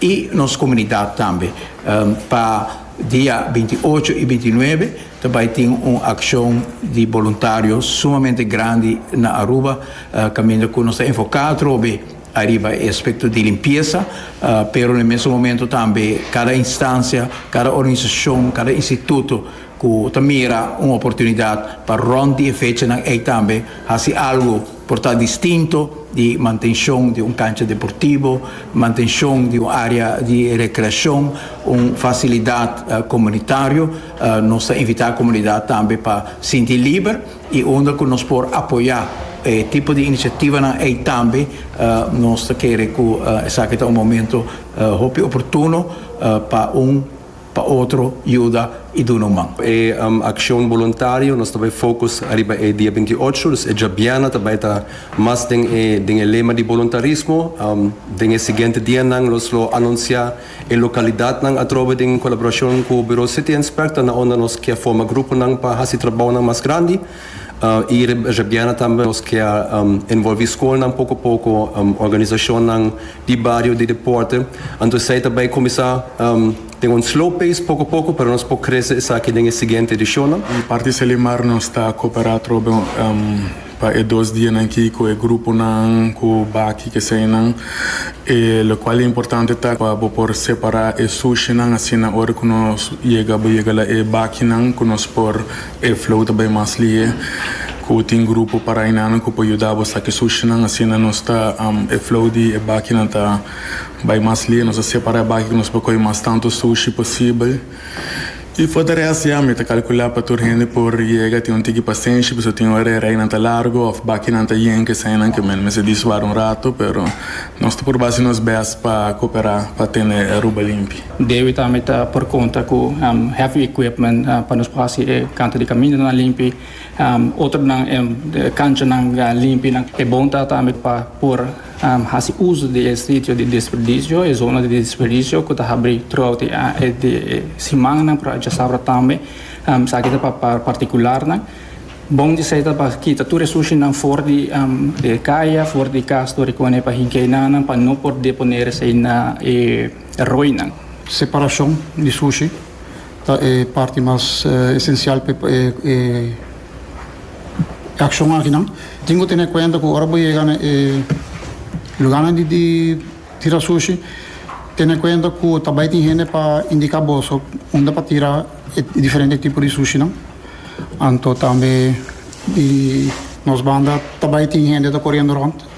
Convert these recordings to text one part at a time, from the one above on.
i nos komunidat tambe. Pa dia binti ocho i binti nuebe ta bai tin un akshon di boluntario sumamente grandi na Aruba kaminda ku nos ta enfoká atrobe ariba e aspekto di limpiesa pero na e mesun momentu tambe kada instansia, kada organisashon, kada instituto ku ta mira un oportunidat pa rònt di e fechanan ei tambe hasi algu. Por ta distinto di mantenshon di un kancha deportibo, mantenshon di un área di rekreashon, un fasilidat komunitario, nos ta invitá komunidat tambe pa sinti liber i unda ku nos por apoyá e tipo di inisiativanan ei tambe nos ta kere ku esaki ta un momento hopi oportuno pa un pa otro yuda i duna un man. E akshon boluntario nos ta bai fokus ariba e dia binti ocho, dus e djabiana ta bai ta mas den e den e lema di boluntarismo. Den e siguiente dianan nos lo anunsiá e lokalidatnan atrobe den kolaborashon ku Buro City Inspector na unda nos ke forma gruponan pa hasi trabounan mas grandi i rebiana tambe nos ke a envolví skolnan poko poko, organisashonnan. di bario di deporte, anto esei ta bai kuminsá den un slow pace poko poko pero nos por krese esaki den e siguiente edishonnan. Di parti Selimar nos ta koperá trobe pa e dos dianan aki ku e gruponan ku baki ku eseinan, e lokual importante ta pa bo por separá e sushinan asina ora ku nos yega bo yega la e bakinan ku nos por. E flow ta bay mas lihe cu tin grupo parainanan cu por yuda bo saki sushinan. Asina nos ta e flow di e bakinan ta bay mas lihe. Nos ta separa e baki cu nos por coge mas tanto sushi posibel. Y for di rest ya mi ta calcula pa tur hende por yega. Tin un tiki pasenshi pasobra tin ora e raynan ta largo of bakinan ta yen cu esainan cu men mester di suar un rato. Pero nos ta purba haci nos best pa coopera pa tene Aruba limpi. Debe tambe ta por konta ku heavy equipment pa nos por hasi e kanta di kamindanan limpi, otronan e kanchanan limpi. E bon ta tambe pa por hasi uso di e sitio di desperdicio, e zona di desperdicio ku ta habri trout di e simannan por a djasabra tambe. Esaki ta pa partikularnan. Bon di esei ta pa kita tur e sushinan for di e kaya, for di kas, tur di kone pa hinkeinanan pa no por deponer esei na e. E roinan. Separashon di sushi ta e parti mas esensial pa e akshon akinan. Tin ku tene kuenta ku ora bo yega na e lugánan di tira sushi, tene kuenta ku ta bai tin hende pa indiká boso unda pa tira e diferente tipo di sushinan. Anto tambe di nos banda ta bai tin hende ta koriendo rònt.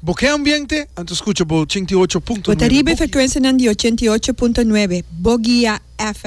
Bo ke ambiente? Anto skucha bo ochenta i ocho punto nuebe Bo guia. Bo ta riba e frekuensianan di ochenta i ocho punto nuebe Bo guia FM.